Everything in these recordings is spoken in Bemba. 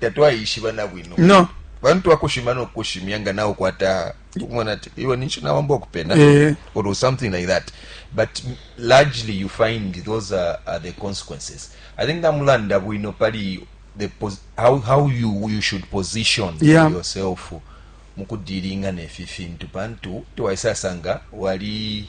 tatwaishiba na bwino no bantu twakushima no kushimya nga nawe kwata ukumona ati iwe ninshi nawamba okupena eh. or something like that but largely you find those are, are the consequences i think namulanda bwino pali the how, how you, you should position yeah. yourself mukudilinga nefi fintu pantu tiwaisasanga wali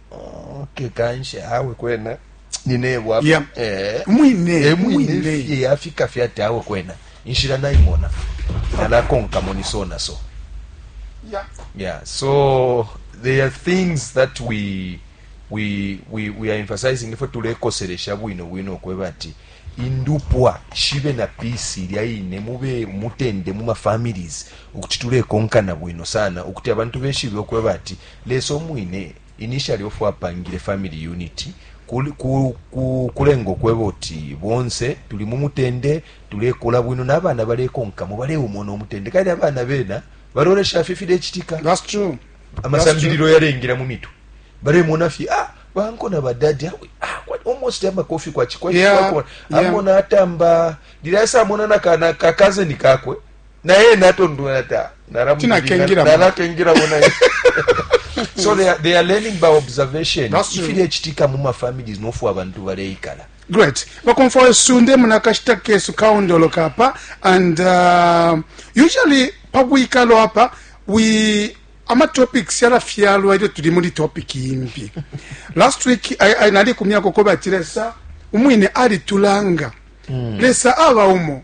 okay kanshi awe kwena ninebo apa yeah. eh, mwine eh, mwine fye yafika fye ati awe kwena inshira nayimona nalakonkamo ni so na so yeah. yeah so there are things that we we we, we are emphasizing ifwe tulekoseresha bwino bwino okweba ati indupwa shibe na pisi ilya ine mube mutende mu mafamilies ukuti tulekonkana bwino sana ukuti abantu beshibe okweba ati Lesa umwine initially of apangile family unit kul ku ku kulengo kweba uti bonse tuli mu mutende tulekula bwino nabana balekonkamo baleumona umutende kali abana bena balolesha fye filecitika That's true. amasambililo yalengila mu mitwe balemona fye ah banko na badadi awe, ah, kwa- almost amakofi kwa chikwa Yeah, chikwa yeah. amona atamba lila yasa amona na kana ka cousin kakwe na ye natondwela ta nalakengilamo naye so they are, they are learning by observation ifilecitika mu mafamilies nofu abantu baleikala great bakomfa wesu ndemu nakashita kesu kaondoloka apa and uh, usually pabwikalo apa we amatopics yalafyalwa ilyo tuli muli topic imbi last week I, I, nalikumyako ko bati lesa umwine alitulanga mm. lesa aba umo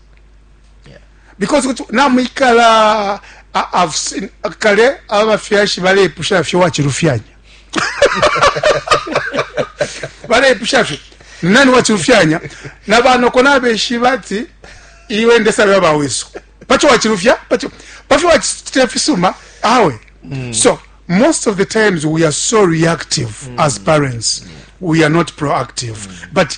because kuti namwikala kale abafyashi balepusha fye wachilufyanya balepusha fye nani wachilufyanya na banoko nabeshiba ati iwe ndesabya bawesu pacho wachilufya pacho pafyo wachitira fisuma awe mm. so most of the times we are so reactive mm. as parents mm. we are not proactive mm. but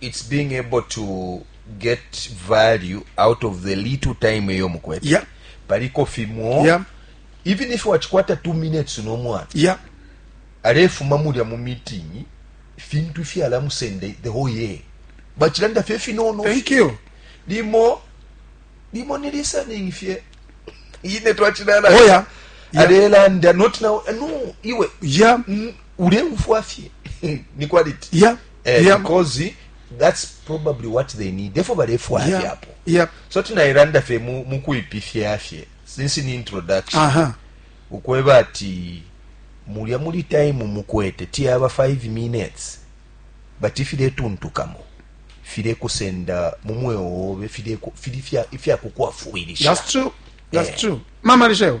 it's being able to get value out of the little time eyo mukwete yeah. paliko fimo yeah. even if wachikwata two minutes nomwana yeah. alefuma mulya mu meeting fintu ifyala musende the whole year bachilanda fye finono thank you limo limo ni listening fye ine twachilala oh, yeah. yeah. alelanda not now eh, no iwe yeah. mm, uleufwa fye ni quality yeah. eh, yeah. because that's probably what they need efo balefwaya yeah. fyapo yeah. so tinairanda fe mukuipifya fye since ni introduction uh -huh. ukweba ati mulya muli time mukwete tiyaba 5 minutes but ifiletuntukamo filekusenda mu mweo wobe fili ifyakukwafwilisha that's true that's eh. true mama lisheo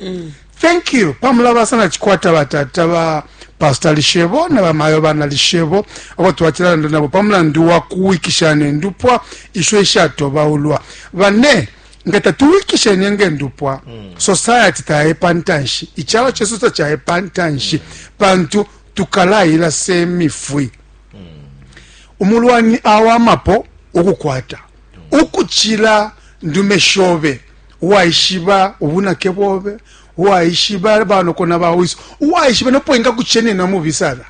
mm. thank you pamulabasa na chikwata batata ba pastor lishebo na bamayo bana lishebo abo twachilalanda nabo pamulandu wa kuwikisha nendupwa isho ishatobaulwa bane nga tatuwikishe nenge ndupwa mm. society tayepa ntanshi ichalo chesu tachayepa ntanshi mm. pantu tukalayila semifwi mm. umulwani awamapo ukukwata mm. ukuchila ndume shobe uwaishiba ubunake bobe uwaishiba banoko na bawiso uwaishiba nopo ingakuchenena mubi sana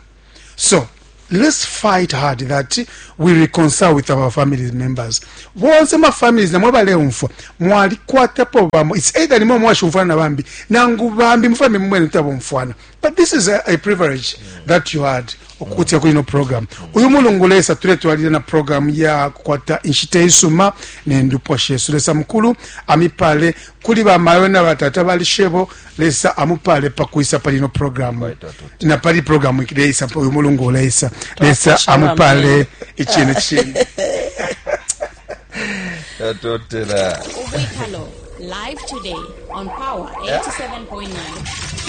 so let's fight hard that we reconcile with our family members bonse ma families namwe baleumfwa mwalikwatapo bamo it's either nimwe mwashumfwana na bambi nangu bambi mufambi mumwene kuti abomfwana but this is a, a privilege mm. that you had okukutia kuli no program uyu mulungu lesa tuletwalile na program ya kukwata inshita isuma nendupwa shesu lesa mukulu amipale kuli bamayo na batata balishebo lesa amupale pakwisa pali no program na pali program ikileisa uyu mulungu lesa lesa amupale ichine chine Live today on Power 87.9.